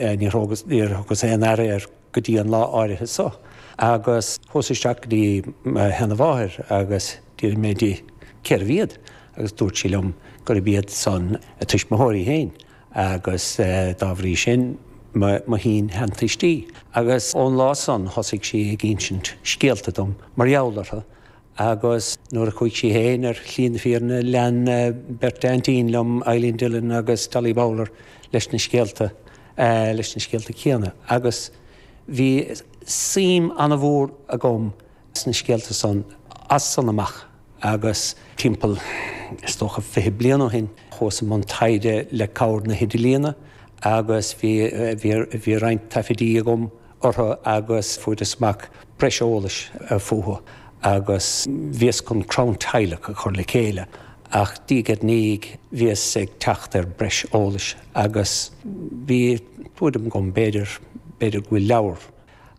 Níor thugas aon aire air go dtí an lá áirithe so, agus chuas isteach go dtí mo sheanamháthair agus d'fhiafraíos di cérbh iad, agus dúirt sí liom gurb iad san a tuismitheoirí féin, agus dá bhrí sin mo shin-sheantuistí. Agus ón lá san thosaigh sí ag insint scéalta dom mar gheall orthu, Agus nuair a chuaigh sí féin ar shlí na fírinne, lean beirt aintín liom, Eileen Dillon agus Dolly Bowler, leis na scéalta, leis na scéalta céanna. Agus bhí suim an-mhór agam sna scéalta san, as san amach. Agus timpeall, is dócha, fiche bliain ó shin, chuas i mbun taighde le cabhair na hidirlíne, agus bhí, bhí, bhí roinnt taifidí agam, orthu agus fuaireas amach breis eolais fúthu agus bhíos chun crann teaghlach a chur le chéile ach diaidh ar ndiaidh bhíos ag teacht ar breis eolais agus bhí tuairim agam b'fhéidir, b'fhéidir go bhfuil leabhar,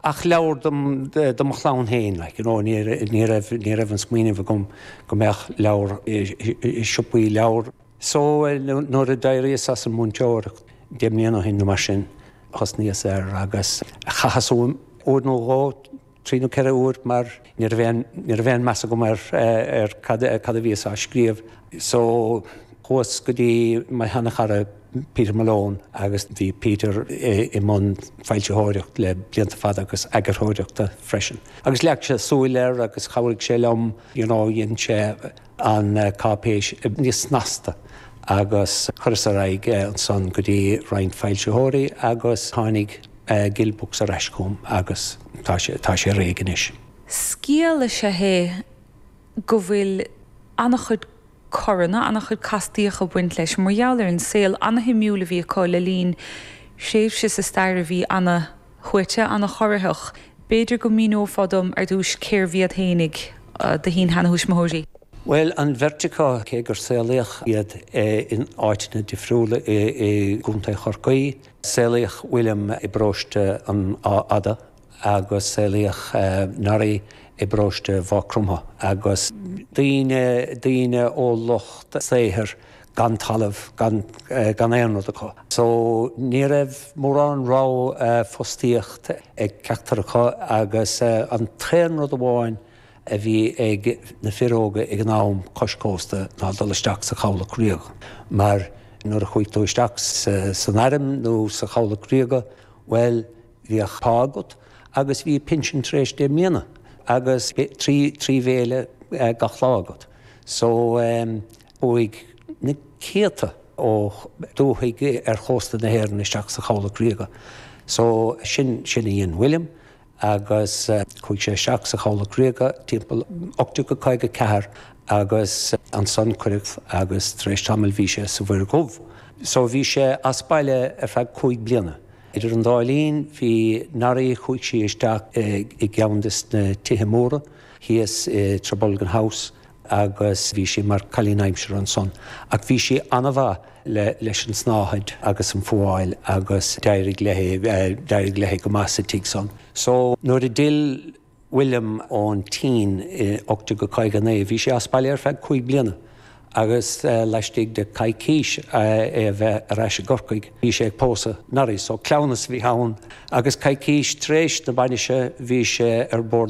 ach leabhar dom, do mo chlann féin like you know, ní raibh, ní raibh an smaoineamh agam go mbeadh leabhar i siopaí leabhar. So, nuair a d'éiríos as an múinteoireacht, deich mbliana ó shin nó mar sin, thosnaíos ar, agus chaitheas uaim uair nó dhó, trí nó ceithre huaire, mar ní raibh aon, ní raibh aon mheas agam ar, ar cad, cad a bhíos á scríobh. So, chuas go dtí mo sheanchara Peter Malone agus bhí Peter i mbun foilsitheoireacht le blianta fada agus eagarthóireachta freisin. Agus leag sé súil air agus chabhraigh sé liom, you know, dhein sé, an cáipéis níos snasta agus chuireas ar aghaidh ansan go dtí roinnt foilsitheoirí agus tháinig Gill Books ar ais chugam agus tá sé, tá sé réidh anois. Scéal is ea é go bhfuil an-chuid coranna, an-chuid castaíocha ag baint leis mar gheall ar an saol an-shuimiúil a bhí acu le linn tréimhse sa stair a bhí an-. shuaite, an-chorraitheach. B'fhéidir go míneofá dom ar dtús cérbh iad fhéinig do shin-sheanathuismitheoirí? Bhuel, an bheirt acu, cé gur saolaíodh iad in áiteanna difriúla i gContae Chorcaí, saolaíodh William i bparóiste an Átha Fhada agus saolaíodh Norrie i bparóiste Mhaigh Chromtha, agus daoine, daoine ó lucht saothair gan talamh, gan aon rud acu. So ní raibh mórán rogha fostaíocht ag ceachtar acu agus an t-aon rogha amháin a bhí ag na fir óga ag an am cois cósta ná dul isteach sa Chabhlach Ríoga. Mar nuair a chuaigh tú isteach san airm nó sa Chabhlach Ríoga, bhuel, bhí pá agat agus bhí pinsean tar éis deich mbliana agus trí bhéile gach lá agat. So. Chuaigh na céadta ó dúthaigh ar chósta na hÉireann isteach sa Chabhlach Ríoga. So, sin, sin a dhein William agus chuaigh sé isteach sa Chabhlach Ríoga timpeall ocht déag caoga a ceathair agus ansan cuireadh agus tar éis tamaill bhí sé sa Mhuir Dhubh. So bhí sé as baile ar feadh cúig bliana. Idir an dá linn bhí Norrie, chuaigh sí isteach i gceann des na tithe móra thíos i Trabolgan House. agus bhí sí mar cailín aimsire ansan. Ach bhí sí an-mhaith le, leis an tsnáthaid agus an fhuáil agus d'éirigh léi, d'éirigh léi go maith sa tigh san. So, nuair a d'fhill William ón tSín i 1859, bhí sé as baile ar feadh cúig bliana agus laistigh de coicís é a bheith ar ais i gCorcaigh, bhí sé ag pósadh Norrie. So, cleamhnas a bhí ann agus coicís tar éis na bainise bhí sé ar bord